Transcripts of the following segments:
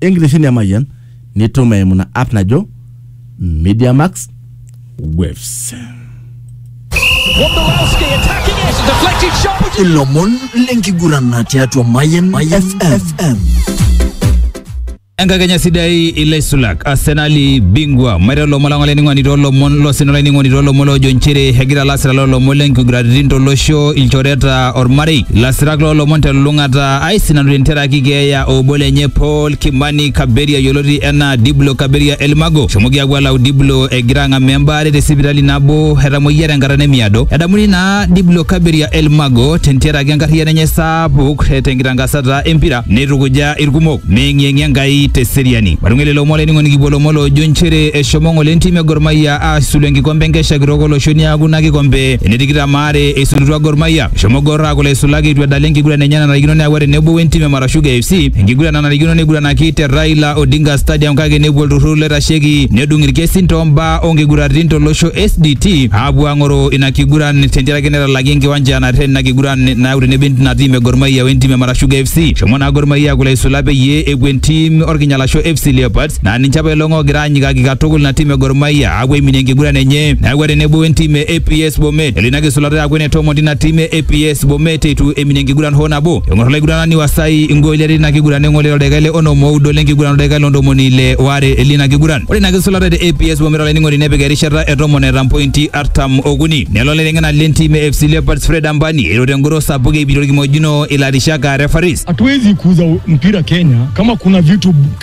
enkitesheni emayian nitum eimu ina app najo media max waves Wondolowski attacking it. Deflected shot. Would you ilomon lenkigurana tiatua Mayen FM. enkakenya sidai ilaisulak arsenali bingwa maita lomon lang olainining'oni toolomon losina olainining'oni toolomon loojo nchere egira lasirak loolomon lenkiguraritin tolosho ilchoreta ormarei lasirak loolomon telulung'ata aisinanu te ntera enkitanyanyuki keeya obo lenye Paul Kimani Kaberia yioloti enaa Diblo Kaberia Elmago. Eshomoki aapuo alau Diblo egira ang'amaa embaare te sipitali nabo etamoyia tenkata nemiado. Edamuni naa Diblo Kaberia Elmago tentiaraki enkarriyiano enye sapuk tenkitankasata empira neitukuja ilkumok meeng'ieng'ie Enkai te seriani. Matung'uai lelo omon olainining'oni kipuo lomon loojo nchere eshomo ng'ole entim e Gor Mahia aasulu enkikombe enkesha kitok olosho niaku ina kikombe ene tikitam aare eisulutua Gor Mahia. Eshomo Gor aaku laisulak eitu edala enkiguran enye nanarikino neyaua tenebo wentim e Marashuga FC enkiguran nanarikino neiguranaki te Raila Odinga Stadium kake nepuo olturrur loitasheki nedung ilkesin too mbaa oo nkiguratin to losho SDT aapuo aang'oroo ina kiguran tentiaraki netalaki enkiwanja nareten ina kiguran nayau tenebo ina tim e Gor Mahia wentim e Marashuga FC. Eshomo naa Gor Mahia aaku laisulak peyie epuo entim olkinyalasho FC Leopards naa ninche apa elong oogira anyikaki katukul ina tim e Gor Mahia aapuo aiminie enkiguran enye neeku ore tenebo entim e APS Bomet elo ina kisulata aaku ene tomon tina tim e APS Bomet eitu eminie enkiguran hoo nabo eng'or olaiguranani Wasai ingooli are tina kiguran neng'ole toldaika le onom oudo lenkiguran oldaika le ntomoni ile waare lina kiguran ore ina kisulata te APS Bomet olainining'oni nepik erishata e tomon eeta mpointi artam okuni nelo olaiteng'enani lentim e FC Leopards Fred Ambani eiro tengoro sapuk eipiti orkimojino ilarishak aa referees Hatuwezi kuuza mpira Kenya kama kuna vitu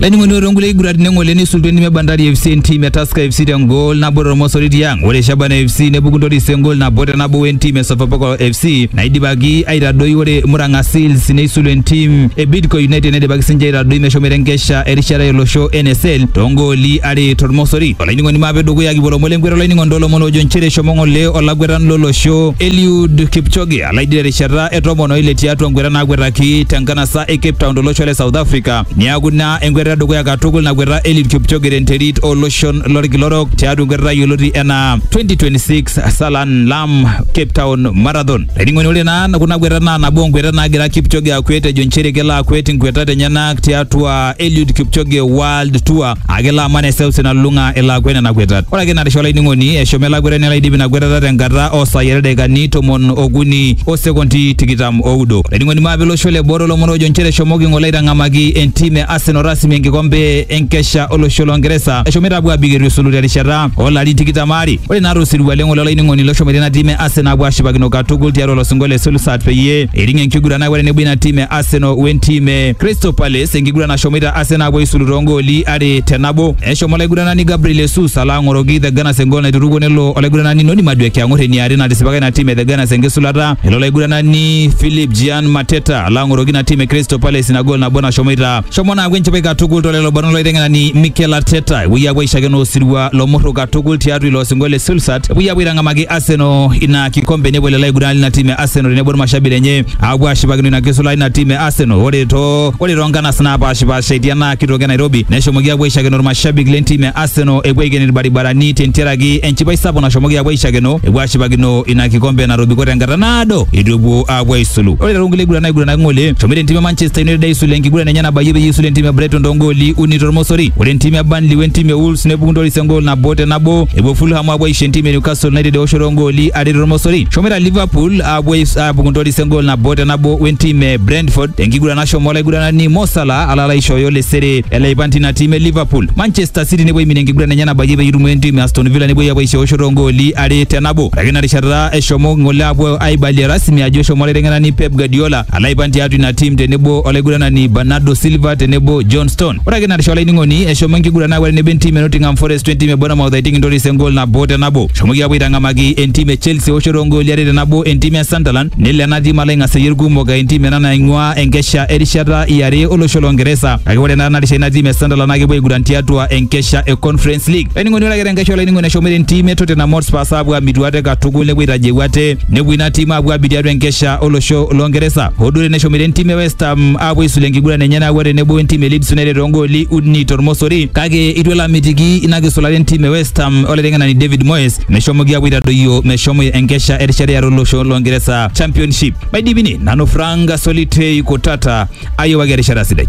Laining'oni ore onkulie kiguraritin eng'ole neisultua entim e Bandari FC entim e Tusker FC tengol nabo tormosori tiang. Ore Shabana FC nepuku Ntoris engol nabo te nabo wentim e Sofapaka FC naidipaki aitadoi ore Murang'a Seals neisulu entim e Bidco United neidipaki sinche aitadoi meshomoita enkesha erishata olosho NSL toongooli are tormosori. Olainining'oni maape dukuya kipuo lomon lenkweta olainining'oni toolomon oojo nchere eshomo ng'ole olakwetani lolosho Eliud Kipchoge alaidi terishata e tomon oile tiatua nkweta naakwetaki tenkanasa e Cape Town tolosho le South Africa Niaku ina enkweta edukuya katukul nakweta Eliud Kipchoge tenterit oloshon lorkila orok tiatua enkwetata yioloti enaa 2026 Salan Lam Cape Town Marathon. Laining'oni ore naa kuna kwetat naa nabo onkwetat naagira Kipchoge akwet ejo nchere kelo akwet inkwetat enyenak tiatua Eliud Kipchoge World Tour Ake ilo aman eseuseu nalulung'a elo akwet nena kwetat. Ore ake ina risha olainining'oni, eshomo ele akwetani alo aidip ina kwetata tenkata oo saai are ildaikani tomon okuni o sekondi tikitam oudo. Olainining'oni maape ilo osho le boo toolomon oojo nchere eshomoki ng'ole aitang'amaki entim e Arsenal rasmi enkikombe enkesha olosho loo Ngeresa eshomoita apuo aabik eitu esulu terishata oo larin tikitam aare. Ore naa to sirua le ng'ole olainining'oni loshomoita ina tim e Arsenal aapuo aashipakino katukul tiatua ilo sinkolio le Solskjaer peyie eiting enkiguran akwet tenebo ina tim e Arsenal wentim e Crystal Palace Palace enkiguran nashomoita Arsenal apuo aisulu toongooli are te nabo. Eshomo olaiguranani Gabriel Jesus alo ang'oroki The Gunners engool naiturukuo nelo olaiguranani Noni Madueke ang'or eniare natisipaka ina tim e The Gunners enkisulata. Elo olaiguranani Philip Gian Mateta alo ang'oroki ina tim e Crystal Palace ina gool nabo nashomoita. Shomo naaku enchipai katukul tolelo barnot loiteng'enani Mikel Arteta epuoi apuo aishakeno osirua lomurru katukul tiatua ilo osingo le Sulsat epuoi apuo aitang'amaki Arsenal ina kikombe nepuo lelo aiguranani ina tim e Arsenal tenebo irmashabik lenye apuo ashipakino ina kisulata ina tim e Arsenal ore too ore too nkanas naapashipasha etii ena kitoki e Nairobi neshomoki aapuo aishakeno irmashabik lentim e Arsenal epuo aiken irbaribarani tentiaraki enchipai sapuk nashomoki aapuo aishakeno epuo aashipakino ina kikombe natobiko tenkata naado eitu epuo aapuo aisulu. Ore too nkulie kiguran naiguranaki ng'ole eshomoita entim e Manchester United aisulu enkiguran enye nabayie peyie eisulu entim e Brighton too ngooli uni tormosori. Ore entim e Burnley we ntim e Wolves nepuku ntoris engool nabo te nabo epuo Fulham aapuo aisho entim e Newcastle United eoshoto oo ngooli are tormosori. Eshomoita Liverpool aapuo apuo aibung intoris engol nabo te nabo wentim e Brentford tenkiguran nashomo olaiguranani Mo Salah ala aishooyo lesere ele aipan tina tim e Liverpool. Manchester City nepuo aiminie enkiguran enye nabayie peyie eitumo entim e Aston Villa nepuoi apuo aishoosho toongooli are te nabo. Ore ake ina rishata eshomo ng'ole apuo aibalie rasmi ajo eshomo olaiteng'enani Pep Guardiola ala aipan tiatua ina tim tenebo olaiguranani Bernardo Silva tenebo John Stone. Ore ake ina rishata olainining'oni eshomo enkiguran apuo tenebo entim e Nottingham Forest wentim e Bournemouth aiting intoris engol nabo te nabo. Shomoki aapuo aitang'amaki entim e Chelsea eoshoto oo ngooli are te nabo entim e Sunderland nelo ena tim alo aing'aseyie ilkumok aa entim ena naing'uaa enkesha erishata e are o losho loo Ngeresa kake ore naa tena rishata ina tim e Sunderland naa kepuo aiguran tiatua enkesha e Conference League. Olainining'oni ore ake te nkesha olainining'oni eshomoita entim e Tottenham Hotspurs aapuo aamitu ate katukul nepuo aitajeu ate nepuo ina tim aapuo aabik tiatua enkesha o losho loo Ngeresa. Hoo duo teneshomoita entim e West Ham aapuo aisula enkiguran enye nayawua tenebo wentim e Leeds United too ngooli uni to lmosori kake eitu elo amitiki ina kisulata entim e West Ham olaiteng'enani David Moyes meshomoki apuo aitadoyio meshomo enkesha erishata eare olosho loongeresa championship maidipini nanu Frank Solitei Kutata ayiewaki erishata sidai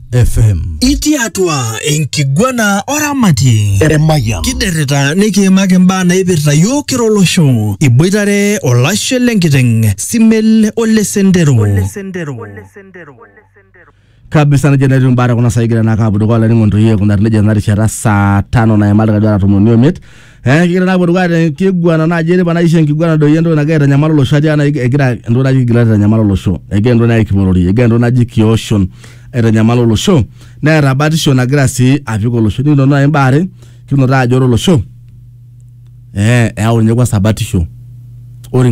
FM. Itii atua enkiguana oramati Emayian. kiderrita nikiimaki imbaa naipirta yiok kira olosho iboitare olashe lenkiteng simel ole sendero kabisa nejo netiu imbaa tekuna saai egira naa aapuo dukuya olainining'oni toi aikunari nejia tena rishata saa tano naimarika duo ara tomon oimiet Eh, kigira naa apuo te kiguana naaji eripa naisho enkiguana doi entoki nagira aitanyamal olosho atii ana egira entoki naji kigila aitanyamal olosho egira entoki naji kipolori egira entoki naji kioshon aitanyamal olosho neeta batisho nagira sii apik olosho nikinoto naaji imbaa are kinoto ajo ore olosho eh, eyau ninye kwanza batisho ore enkae